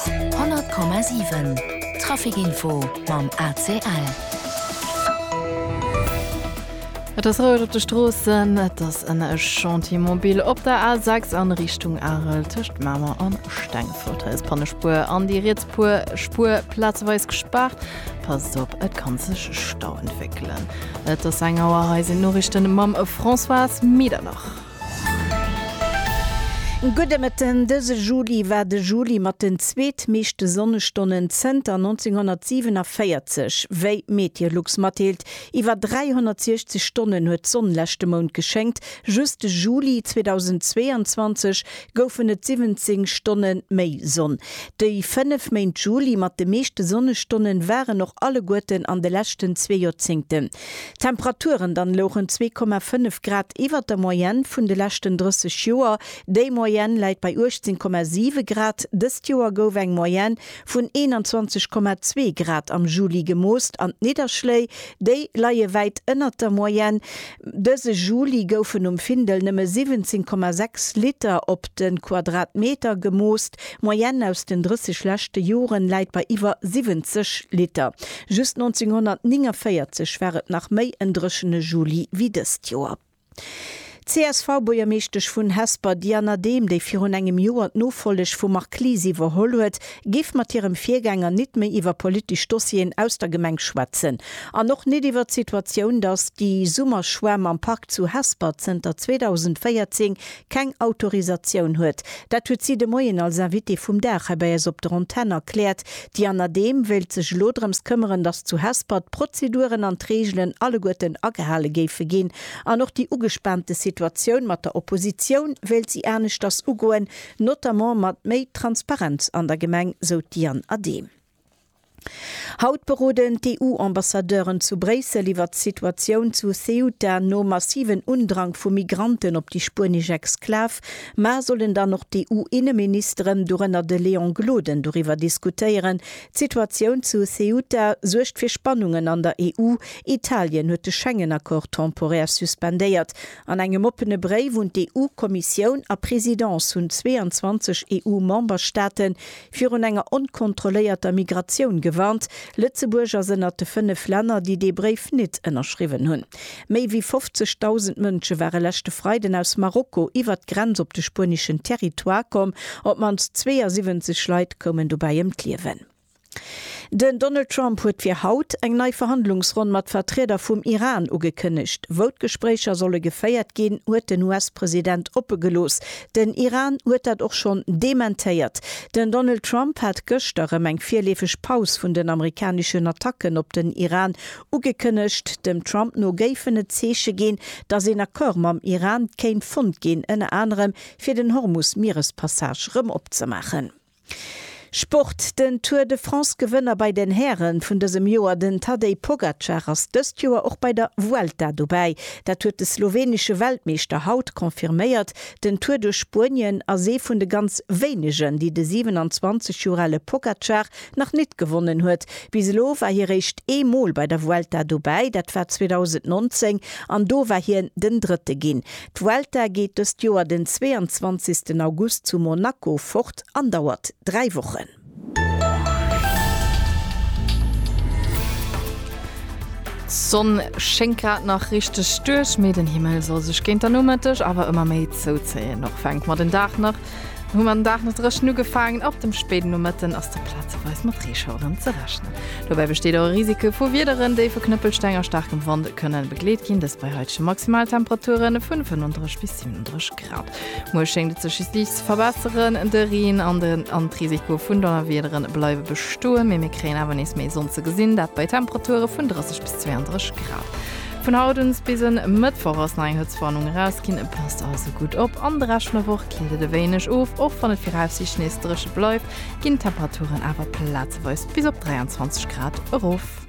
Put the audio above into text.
100,7 Trafic Info mam ACL. Et ass roueg op de Stroossen, et ass en Chantier mobil op der A6 an Richtung Arel tëscht Mamer an Stengefort. Hei ass d'Pannespuer an déi riets Puer Spuer plazeweis gespaart. Passt op, et kann sech Stau entwéckelen. Et ass eng Auer, hei sinn d'Noriichten mam Françoise Medernach. Gudde Mëtten, Dëse Juli war de Juli mat den zweetmeeschte Sonnestonnen zënter 1947. Wéi Meteolux matdeelt, iwwer 360 Stonnen huet d'Sonn leschte Mount geschéngt. Just de Juli 2022 goufen et 17 Stonne méi Sonn. Déi fënnef Méint Juli mat de meeschte Sonnestonnen waren och alleguerten an de leschten zwee Joerzéngten. D'Temperaturen dann louchen 2,5 Grad iwwert der Moyenne vun de leschten 30 Joer. Déi Moyenne läit bei 18,7 Grad. Dëst Joer gouf eng Moyenne vun 21,2 Grad am Juli gemoost an d'Nidderschléi, déi leie wäit ënnert der Moyenne. Dëse Juli goufen um Findel nëmme 17,6 Liter op de Quadratmeter gemoost. D'Moyenne aus den 30 leschte Joren läit bei iwwer 70 Liter. Just 1949 war et nach méi en dréchene Juli wéi dëst Joer. D'CSV-Buergermeeschtesch vun Hesper Diana Dehm, déi virun engem Joer d'Nofolleg vum Marc Lies iwwerholl huet, géif mat hirem Virgänger nit méi iwwer politesch Dossieren aus der Gemeng schwätzen an och nit iwwer d'Situatioun, datt déi Summerschwämm am Park zu Hesper zënter 2014 keng Autorisatioun huet. Dat huet si de Moien als Invitée vum Dag hei bei eis op der Antenn erkläert. Déi Anna Dehm wéilt sech elo drëms këmmeren, datt zu Hesper d'Prozeduren an d'Reegelen alleguerten agehale géife ginn. An och déi ugespaante Situatioun mat der Oppositioun wéilt si aneschters ugoen, notamment mat méi Transparenz an der Gemeng, sou d'Diane Adehm. Haut beroden d'EU-Ambassadeuren zu Bréissel iwwert d'Situatioun zu Ceuta. Nom massiven Undrang vu Migranten op déi spuenesch Exklav Mar sollen dann och d'EU-Inneministeren, dorënner de Léon Gloden, doriwwer diskutéieren. D'Situatioun zu Ceuta suergt fir Spannungen an der EU. Italien huet de Schengen-Accord temporär suspendéiert. An engem oppene Bréif un d'EU-Kommissioun a Presidence hunn 22 EU-Memberstaaten virun enger onkontrolléierter Migratioun gewarnt. Lëtzebuerg ass ënnert de fënnef Länner, déi dee Bréif nit ënnerschriwwen hunn. Méi wéi 50.000 Mënsche ware leschte Freiden aus Marokko iwwert d'Grenz op de spueneschen Territoire komm. Op d'mannst 72 Leit koumen dobäi ëm d'Liewen. Den Donald Trump huet fir haut eng nei Verhandlungsronn mat Vertrieder vum Iran ugekënnegt. Wou d'Gespréicher solle geféiert ginn, huet den US-President oppe gelooss. Den Iran huet dat och schonn dementéiert. Den Donald Trump hat gëschter rëm eng virleefeg Paus vun den amerikaneschen Attacken op den Iran ugekënnegt. Dem Trump no géifen et Zeeche ginn, datt een Accord mam Iran kéint fonnt ginn, ënner anerem fir den Hormus-Mierespassage rëm opzemaachen. Sport, Den Tour de France Gewënner bei den Häre vun dësem Joer, den Tadej Pogacar, ass dëst Joer och bei der Vuelta dobäi. Dat huet de slowenesche Weltmeeschter haut confirméiert. Den Tour duerch Spuenien ass ee vun de ganz wéinegen, déi de 27 Joer ale Pogacar nach nit gewonnen huet. Bis elo war hie réischt ee Mol bei der Vuelta dobäi, dat war 2019 an do war hien den Drëtte ginn. D'Vuelta geet dëst Joer den 22 August zu Monaco fort an dauert 3 Wochen. D'Sonn schéngt grad nach richteg duerch, mee den Himmel soll sech géint der Nomëtteg awer ëmmer méi zouzéien. Och fänkt mer den Dag nach Hu mer den Dag nach dréchen ugefaangen, ab dem spéiden Nomëtten ass da plazeweis mat Reeschaueren ze rechnen. Dobäi besteet och e Risiko vu Wiederen, déi vu Knëppelsteng a staarkem Wand kënne begleet ginn, dëst bei haitege Maximaltemperature vun 35 bis 37 Grad. Muer schéngt et sech just liicht ze verbesseren, de Reen an de Risiko vun Donnerwiedere bleiwe bestoen, mee mir kréien awer nees méi Sonn ze gesinn, dat bei Temperature vun 30 bis 32 Grad. Vun haut uns bis en Mëttwoch ass nei Hëtzwarnung erausginn, passt also gutt op. An de Rescht vun der Woch killt et e wéineg of, och wann et viraussiicht nees dréche bleift, ginn d'Temperaturen awer plazeweis bis op 23 Grad erof.